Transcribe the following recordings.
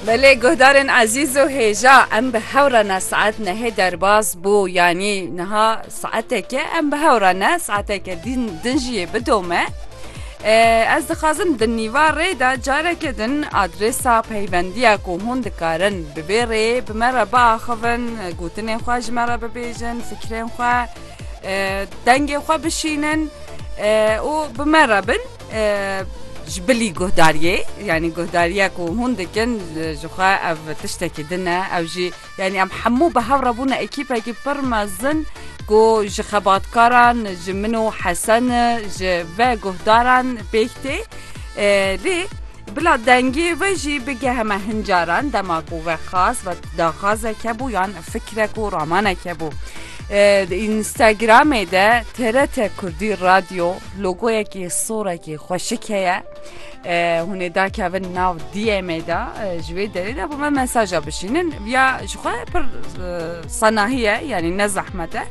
Belê guhdarên ezîz û hêja em bi hew re ne saet nehê derbas bû yanî niha saeteke em bi hew re ne saeteke dîn din jî yê bidome. Ez dixwazim di nîva rê de careke din adrêsa peyvendiya ku hûn dikarin bi vê rê bi me re biaxivin gotinên xwe ji me re bibêjin fikirên xwe dengê xwe bişînin û bi me re bin. Ji bilî guhdariyê yanî guhdariya ku hûn dikin jixwe ev tiştekî din e ew jî yanî em hemû bi hev re bûne ekîpekî pir mezin ku ji xebatkaran ji min û hesen ji ve guhdaran pêk tê lê bila dengê ve jî bigehe me hincaran dema ku ve xas ve daxazeke bû yan fikrek û ramaneke bû. Instagramê de TRT Kurdî Radyo Logoyekî sorekî xweşik heye hûn ê dakevin nav DM'ê de ji wê derê de bo me mesaja bişînin ya ji xwe pir senahî ye yanî ne zehmet e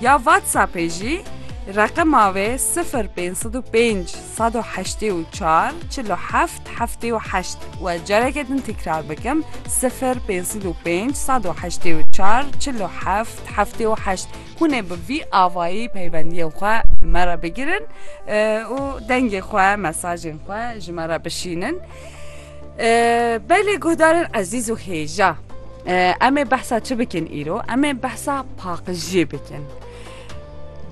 ya WhatsAppê jî reqema wê sifir pênc sed û pênc sed û heştê û çar çil û heft heftê û heşt we careke din tîkrar bikim sifir pênc sed û pênc sed û heştê û çar çil û heft heftê û heşt Hûn ê bi vî avayî peywendiyên xwe me re bigirin û dengê xwe, mesajên xwe ji me re bişînin. Belê guhdarên ezîz û hêja em ê behsa çi bikin îro? Em ê behsa paqijiyê bikin.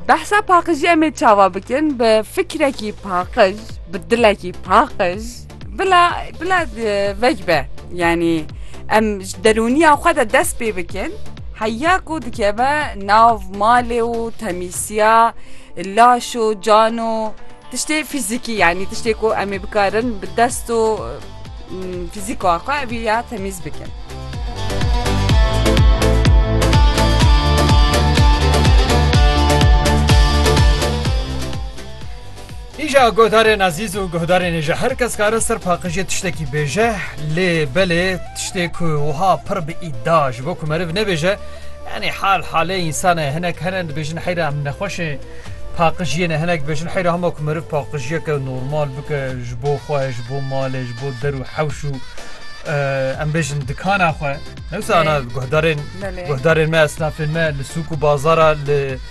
Behsa paqijiyê em ê çawa bikin bi fikrekî paqij, bi dilekî paqij, Bila bila vecbe yanî em ji derûniya xwe de dest pê bikin heya ku dikeve nav malê û temîsiya laş û can û tiştê fîzîkî yanî tiştê ku em ê bikarin bi dest û fîzîka xwe evî ya temîz bikin. Îja guhdarên ezîz û guhdarên ê ji her kes kare ser paqijê tiştekî bêje lê belê tiştê ku wiha pir bi îda ji bo ku meriv nebêje yanî hal halê însan e hinek hene dibêjin heyra em nexweş ê paqijiyê ne hinek dibêjin heyra hema ku meriv paqijiyeke normal bike ji bo xwe ji bo malê ji bo der û hewş û em bêjin dikana xwe newsana guhdarên guhdarên me esnafên me li sûk û bazara li